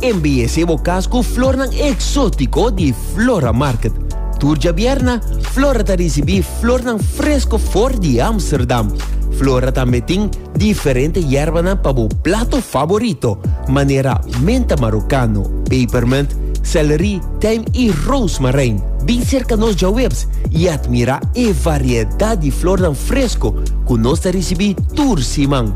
Embeyesé bo cas cu flornan exótico di Flora Market. Tur djabierna, Flora ta ricibi flornan fresco for di Amsterdam. Flora tambe tin diferente yerbanan pa bo plato favorito, manera menta marocano, pepermint, celery, tijm y rozemarijn. Bin cerca nos djawebs y admira e variedad di flornan fresco cu nos ta ricibi tur siman.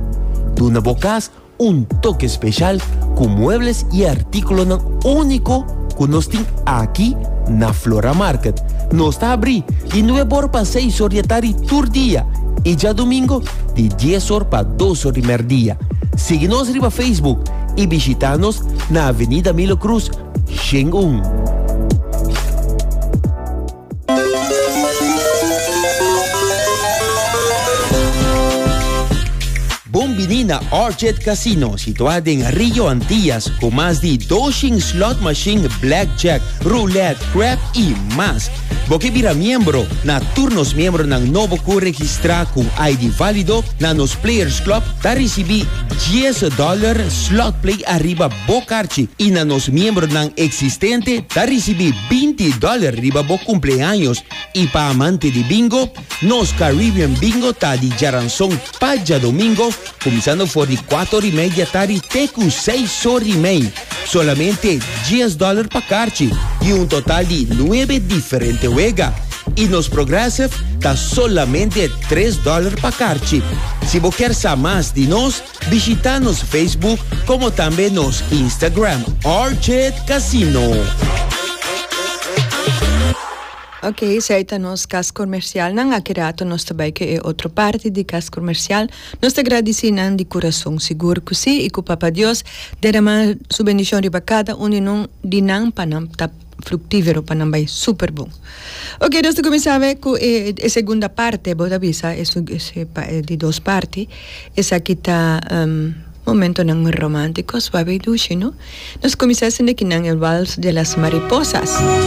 Duna bo cas Un toke speshal ku muebles i artíkulonan úniko ku nos tin aki na Flora Market. Nos ta abrí di nueb or pa seis or di e tardi tur dia i djadumingo di dies or pa dos or di mèrdia. Sigui nos riba Facebook i bishitá nos na Avenida Milo Cruz, Shen un. Bon bini na Orchid Casino, situá den Rio Antillas, ku mas di doshen slot machine, blackjack, roulette, crap i mas. Bo ke bira miembro na tur nos miembronan nobo ku registrá ku ID válido na nos Players Club ta risibí dies dòler slot play ariba Bo karchi i na nos miembronan eksistente ta risibí binti dòler riba bo kumpleaños i pa amante di bingo, nos Caribbean Bingo ta di djaranson pa djadomingo kuminsando for di kuator i media tari te ku seis or di mei. Solamente dies dòler pa karchi i un total di nuebe diferente wega. I nos Progressive ta solamente tres dòler pa karchi. Si bo kier sa mas di nos. Bishita nos Facebook como tambe nos Instagram Orchid Casino. Ok, esei ta nos kas komersialnan. Aki rato nos ta bai ku e otro parti di kas komersial. Nos ta gradisí nan di kurason, sigur ku sí, i ku Papa Dios deramá Su bendishon riba kada un di nan pa nan ta fructivero pa nan bay super bon. Ok nos ta cuminsa bay cu e e segunda parte bo ta bisa e e di dos parti esaki ta momentonan romanticos papi Dushi no nos cuminsa esende kinan e vals de las mariposas.